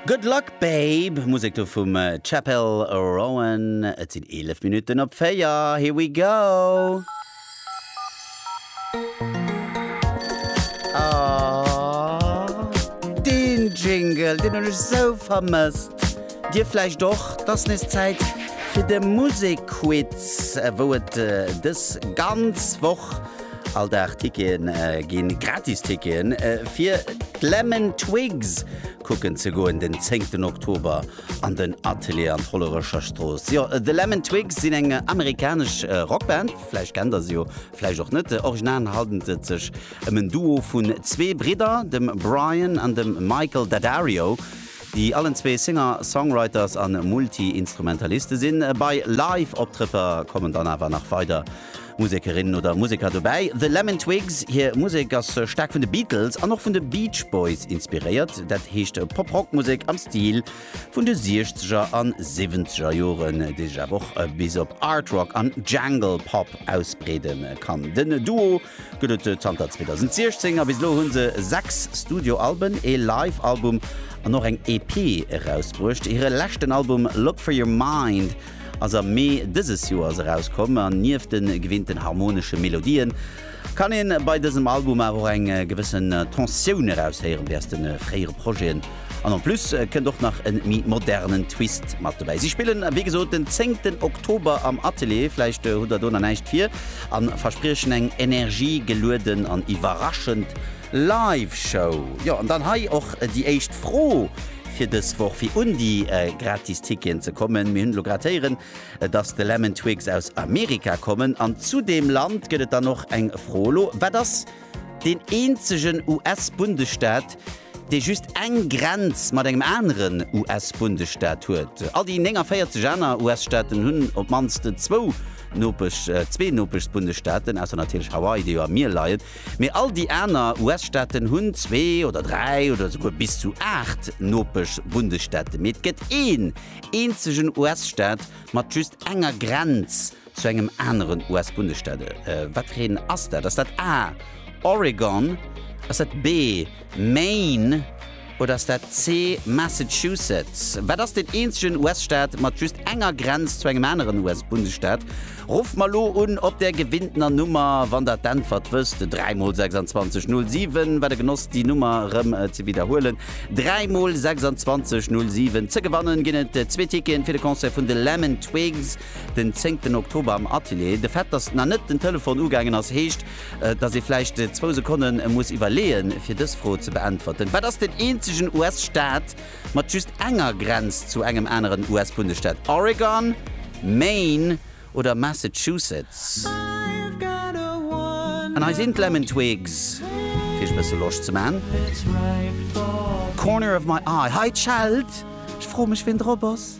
Good Luck Babe, Musek do vum Chappell Roan. Et sinn 11 Minutten op 4. Here we go! Aww, deen Jingle, deen hunn ech esou vermësst. Dir vläicht och. Et ass nees Zäit fir de Musekquiz, wou et dës ganz Woch. All Dag Ticketen ginn, gratis Ticketen, fir d'Lemon Twigs kucken ze goen den 10 Oktober an den Atelier an d'Hollerecher Strooss. Jo, The Lemon Twigs sinn eng amerikanesch Rockband, vläicht kennt der se jo, vläicht och net. Original handelt et sech ëm en Duo vun zwee Bridder, dem Brian an dem Michael Daddario, déi allen zwee Singer, Songwriters a Multi-Instrumentaliste sinn. Bei Live-Optrëtter kommen dann awer nach weider. Musekerin oder Museker dobäi. The Lemon Twigs hir Musek ass staark vun de Beatles an och vun de Beach Boys inspiréiert, dat heescht Pop-Rock-Musek am Stil vun de Siechzeger an Siwwenzeger Joren, déi sech awer och bis op Art-Rock an Jangle Pop ausbreede kann. Den Duo gëtt et zanter 2016 a bis elo hu se sechs Studio-Alben, ee Live-Album an och eng EP erausbruecht. Hire leschten Album Look For Your Mind ass am Mee dëses Joers erauskomm an nieft de gewinnten harmonesche Melodien kann een bei dësem Album awer och eng gewëssen Tensioun eraushéieren wéi aus de fréiere Projeten an en plus kënnt och nach en méi modernen Twist mat dobäi. Si spillen wéi gesot den zéngten Oktober am Atelier, vläicht hutt der do nach näischt vir, a verspriechen eng energiegelueden an iwwerraschend Live-Show. Jo, an dann hei och déi éischt Fro. fir dës Woch fir un déi gratis Ticketen ze kommen. Mir hunn elo grad héieren, dass de Lemon Twigs aus Amerika kommen. An zu deem Land gëtt et dann och eng Fro elo, Wat ass deen eenzegen US-Bundesstaat, dee just eng Grenz mat engem aneren US-Bundesstaat huet? All déi 49 aner US-Staaten hunn op d'mannst zwou Nopesch, zwee Nopeschsbundesstaaten, ausser natierlech Hawaii, déi jo am Mier leien. Mee all déi aner US-Staaten hunn zwee oder dräi oder esouguer bis zu aacht Nopesch-Bundesstaate. Mee et gëtt een eenzegen US-Staat mat just enger Grenz zu engem aneren US-Bundesstaat. Watreen ass dat? Ass dat A, Oregon? Ass dat B, Maine oder ass dat C, Massachusetts? Wat ass den eenzegen US-Staat mat just enger Grenz zu engem aneren US-Bundesstaat? Rufft mer elo un op där gewinntner Nummer, wann der d'Äntwert wësst, 3 mol 26 07. Wat e Genoss déi Nummer erëm ze widderhuelen, 3 mol 26 07. Ze gewannen ginn et zwee Ticketen fir de Concert vun de Lemon Twigs den zéngten Oktober am Atelier. De Fait, dass nach net den Telefon ugaangen ass, heescht, Dass ee vläicht zwou Sekonne muss iwwerleeën, fir dës Fro ze beäntwerten, Wat ass den eenzegen US-Staat mat just enger Grenz zu engem aneren US-Bundesstaat? Oregon, Maine oder Massachusetts? An hei sinn d'Lemon Twigs, fir iech e bësse Loscht ze maachen. Corner of my eye, hei d'Scheld, ech froe mech, wien drop ass.